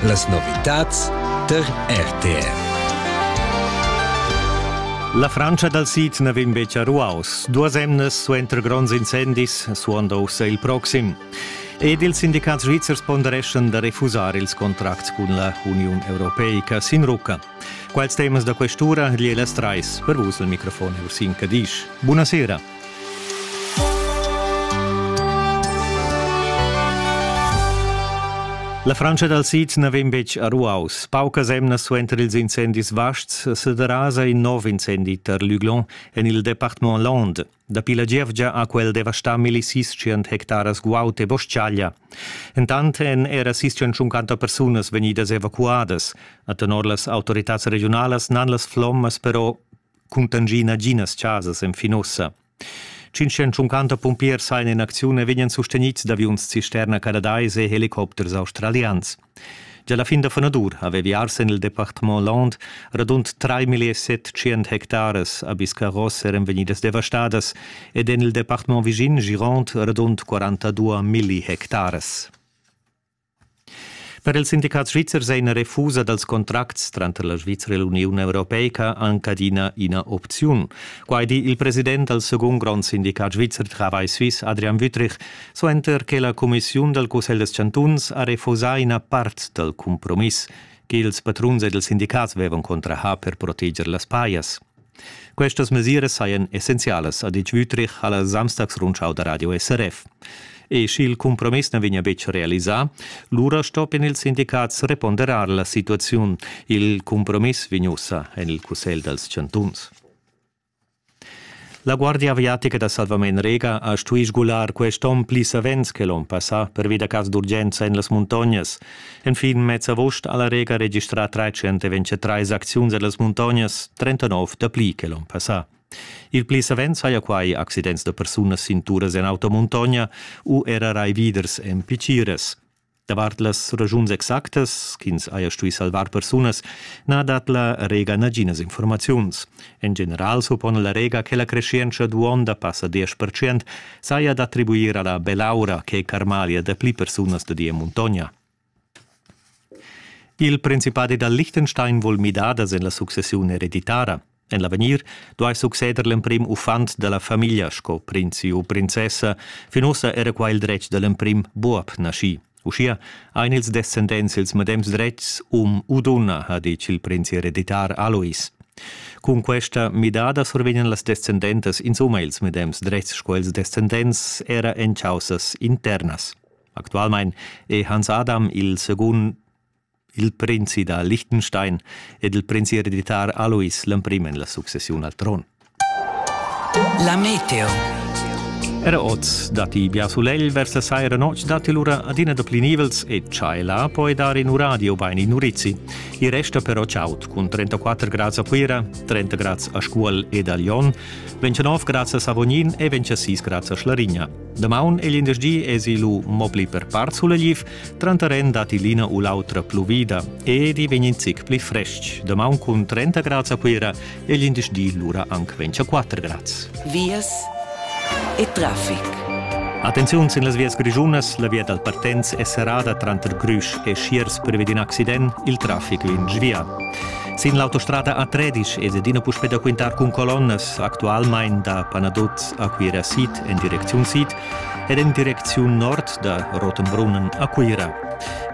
Las novitads tar RTR. La Frantscha dal sid na vegn betg a ruaus. Duas emnas suenter gronds incendis suonda ussa il proxim. Ed ils sindicats svizzers pondereschan da refusar ils contracts cun la Uniun Europeica sin rucca. Quels temas da quest'ura li las trais per vus il microfon Ursin Cadisch. Buonasera. La Frantscha dal sid na vegn betg a ruaus. Paucas emnas suenter ils incendis vasts sederasa in nov incendi tar Luglon en il departament Lande. Dapi la gievgia ha quel devastà millis hectaras guaud e bostgaglia. Entant èn era 650 persunas vegnidas evacuadas. A tenor las autoritads regionalas n'han las flommas però cuntangi naginas chasas enfin ussa. 550 pumpiers sajan in acziun e vegnan sustenids d'aviuns cisterna canadais e helicopters australians. Già la fin da fanadur avevi ars en il departement Land radund 3.700 hectares a Biscarros eran vegnidas devastadas ed en il departement vischin Girond radund 42 milli hectares. Per ils sindicats svizzers è ina refusa dals contracts tranter la Svizra e l'Uniun europeica anc adina ina opziun. Quai di il president dal segund grond sindicat svizzer Travail Suisse Adrian Wüthrich, suenter che la cumissiun dal Cussegl des Chantuns ha refusà ina part dal cumpromiss ch'ils patruns ed ils sindicats avevan contrahà per proteger las pajas. Questas mesiras sajan essenzialas, ha ditg Wüthrich ha la Samstagsrundschau da radio SRF. E sch'il cumpromiss na vegnia betg realisà, lura stoppien ils sindicats reponderar la situaziun. Il cumpromiss vegn ussa en il Cussegl dals chantuns. La Guardia aviatica da Salvamain Rega ha stuì sgular quest onn pli savens che l'onn passà pervi da cas d'urgenza en las muntognas. Enfin mez agost ha la Rega registrà 323 acziuns a las muntognas, 39 dapli che l'onn passà. Il pli savens haja quai accidents da persunas sin turas en automuntogna u era raividers en piciras. Davart las ragiuns exactas ch'ins haja stuì salvar persunas na dat la Rega naginas informaziuns. En general suppona la Rega che la creschientscha d'uonda passa 10%, saja d'attribuir a la bell'aura che Carmalia dapli persunas studia en muntogna. Il principadi dal Liechtenstein vul midadas en la successiun ereditara. En l'avegnir duai succeder l'emprim uffant da la famiglia sco prinzi u princessa, fin ussa era qua il dretg da l'emprim buob naschì. Uschia ein ils descendents ils medems dretgs um u dunna, ha ditg il prinzi hereditar Alois. Cun questa midada survegnan las descendentas insumma ils medems dretgs sco ils descendents era en caussas internas. Actualmein è Hans Adam il secund il prinzi da Liechtenstein ed il prinzi ereditar Alois l'emprim en la successiun al tron. La meteo. Era oz datti bia sulegl vers la saira notg datti lura adina da pli nivels e tschaiela poi dar in uradio bain in urizi. I resta però chaud cun 34 grads a Cuira, 30 grads a Scuol ed a Lyon, 29 grads a Savognin e 26 grads a Schlarigna. Damaun e glindesdi esi lu mo pli per part sulegliv, Tranteren datti l'ina u l'autra pluvida ed i vegn in zic pli frestg. Damaun cun 30 grads a Cuira e l'indice di lura anc 24 grads. Vias e traffic. Attenziun sin las vias grischunas, la via dal Partenz è serrada tranter Grüsch e Schiers privi d'in accident, il traffic in svia. Sin l'autostrada A13 ed adina puspè da quintar cun colonnas, actualmain da Panaduz a Cuira Sid en direcziun sid, ed en direcziun nord da Rotenbrunnen a Cuira.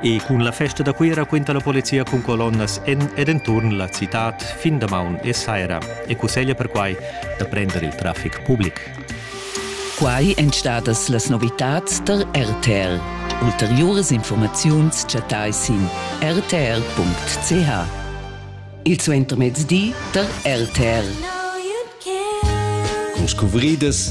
E cun la festa da Cuira quinta la polizia cun colonnas en ed enturn la citad fin damaun e saira e cusseglia perquai da prender il traffic public. Quai èn stadas las novitads tar RTL. Ulteriuras informaziuns chattai sin rtr.ch. Il suentermezdi tar RTL. Con scuvridas